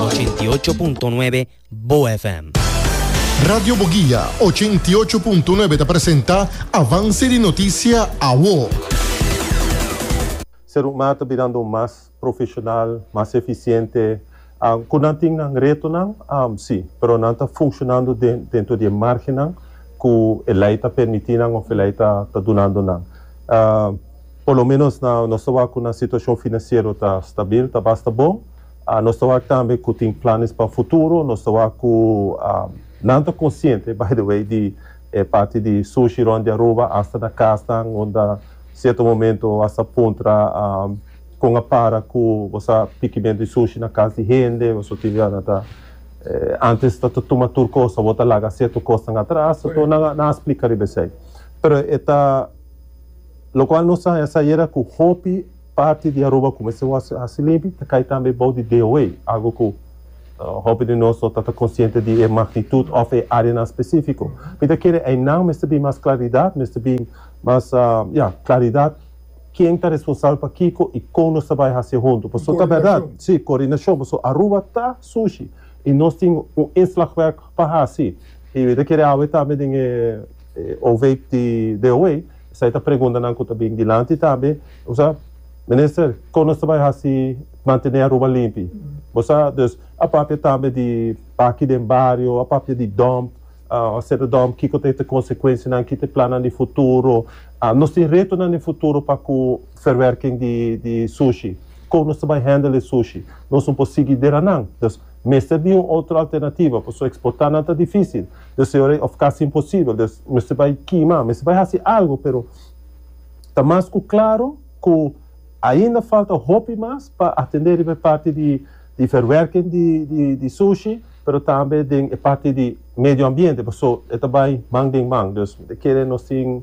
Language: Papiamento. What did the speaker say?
Ochenta i ocho punto nuebe Bo FM. Radio Boguia ochenta i ocho punto nuebe ta presenta Avance di Noticia Awo. Serumma ta birando mas profesional, mas eficiente. Cu nan tin nan retonan? Si, pero nan ta funcionando dentro di e margennan cu e ley ta permiti nan of e ley ta dunando nan. Por lo menos nos ta wak cu nan situacion financiero ta stabil, ta basta bon. Nos ta wak tambe ku tin planes pa futuro. Nos ta wak ku nan ta konsiente, by the way, di e parti di sushi rònt di Aruba, asta na kasnan unda sierto momento bo a sa puntra kon a para ku bo sa pikimentu di sushi na kas di hende o suti. Nan ta antes ta ta tuma tur kos, awor ta laga sierto kosnan atras. So nan nan a splika riba esei. Pero e ta lokual nos a haña sa yera ku hopi. Parti di Aruba kumesa wòrse hasi limpi ta kai tambe bou di DOA, algu ku hopi di nos no ta ta konsiente di e magnitut òf e áreanan spesífiko. Mi ta kere einan mester bin mas klaridat, mester bin mas, ya, klaridat ken ta responsabel pa kiko i kon nos ta bai hasié huntu. Pasobra ta bèrdat, sí, koordinashon, pasobra Aruba ta sushi i nos tin un inslagwerk pa hasi. I mi ta kere awe tambe den e OVEIP di DOA. Esai ta preguntanan ku ta bin dilanti ta be, bo sa, Minister, kon nos ta bai hasi mantené Aruba limpi? Bo sa, dus a papia tambe di baki den bario, a papia di dòmp, a seta dòmp, kiko ta e ta konsekuensianan, ki ta e plannan di futuro. Nos tin retonan den futuro pa ku verwerking di di sushi. Kon nos ta bai hendel e sushi? Nos no por sigui deranan. Dus Mester di un otro alternativa, pasobra exportá nan ta difícil, deseoré of casi imposibel, des mester bai kima, mester bai haci algo, pero ta mas cu claro cu ainda falta hopi mas pa atendé riba e parti di di verwerking di di di sushi, pero tambe den e parti di medioambiente, pasobra e ta bai man den man, dus e kere nos tin.